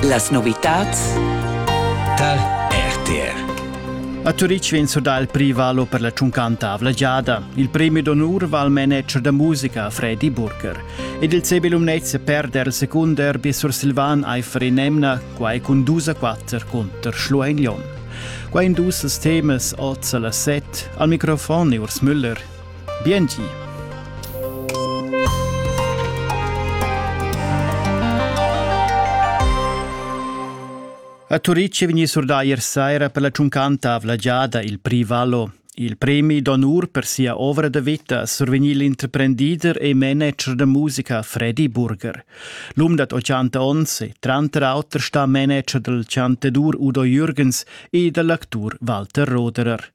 Las novitads dal RTR a Turitg vegn surdà il prix valo per la tschuncanta avlagiada. Il premi d'onur va al manager da musica Fredi Burger. Ed il CB Lumnezia perder il secund derby sursilvan Eifer in Emna, quai cun dus a quatter cunter Schlueignon. Qua in dus temas oz a las set. Al microfon Urs Müller. Biengi! A Turitg è vegnì surdà ier saira per la tschuncanta avla giada il Prix Vallo. Il premi d'onur per sia ovra da vita ha survegnì l'interprendider e manager da musica Freddy Burger. L'um dad 80 onns è tranter auter stà manager dal chantadur Udo Jürgens e dal actur Walter Roderer.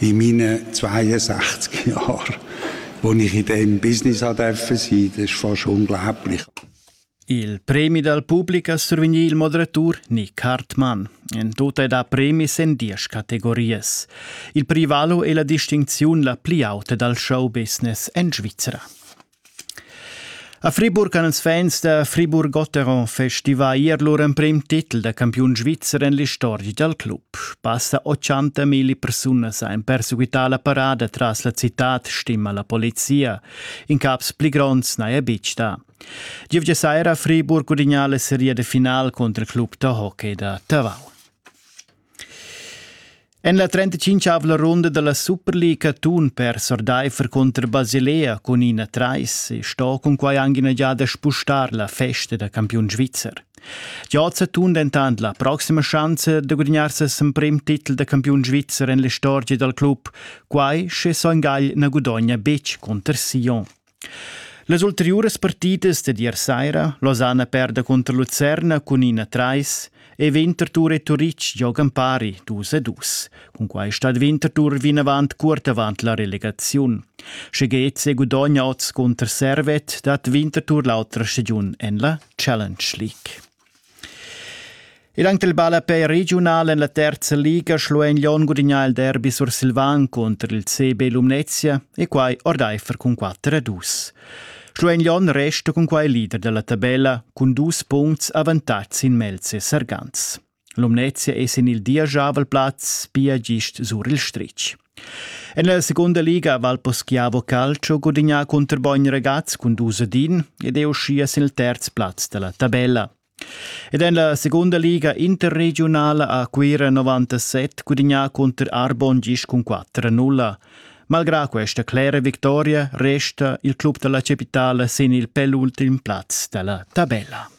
in meinen 62 Jahren, wo ich in dem Business durfte sein. Das ist fast unglaublich. Il premi dal pubblic a survegnir il moderatur Nick Hartmann. En tut è da premis en diesch categorias. Il privalo è la distincziun la pli auta dal show business en Svizzera. A Friburg han ils fans da Friburg-Gotteron festivà ier lur emprim titel da campiun svizzer en l'istorgia dal club. Passa 80 milli persunas han perseguità la parada tras la citad, stima la polizia. In caps pli gronds n'haja betg dà. Gievgia saira a Friburg gudignà la seria de final cunter il club da hockey da Tavau. En la 35-avla runda da la Superliga tun per Sordeifer cunter Basilea cun ina trais e sto cunquai anche ina giada spustar la festa da campiun svizzer. Giazza tun dentant la proxima schanza da gudignar ses emprim titel da campiun svizzer en l'istorgia dal club, quai sche Son Gagl na gudogna betg cunter Sion. Las ulteriuras partidas dad ier saira, Losanna perda cunter Lucerna cun ina trais e Winterthur e Turitg giogan pari dus a dus. Cun quai stat Winterthur vinavant cuort avant la relegaziun. Sche Geze gudogna oz cunter Servet, dat Winterthur l'autra stagiun en la Challenge League. Ir anc dal ballapè regiunal en la terza liga Schluein Lyon gudignà il derbi sursilvan cunter il CB Lumnezia e quai ordaifer cun 4 a 2. Schluein Lyon resta cun quai leader dalla tabella cun dus puncts avantats sin Melz e Sargans. Lumnezia è sin il diajavel plaz pia gist sur il stritg. En la segunda liga ha Valposchiavo Calcio gudignà cunter Bogn Regaz cun dus ad in ed è uschia sin il terz plaz da la tabella. Ed en la segunda liga interregiunala ha Cuira 97 gudignà cunter Arbon gis cun 4-0. Malgrà questa clera victoria resta il club da la capitala sin il penultim plaz da la tabella.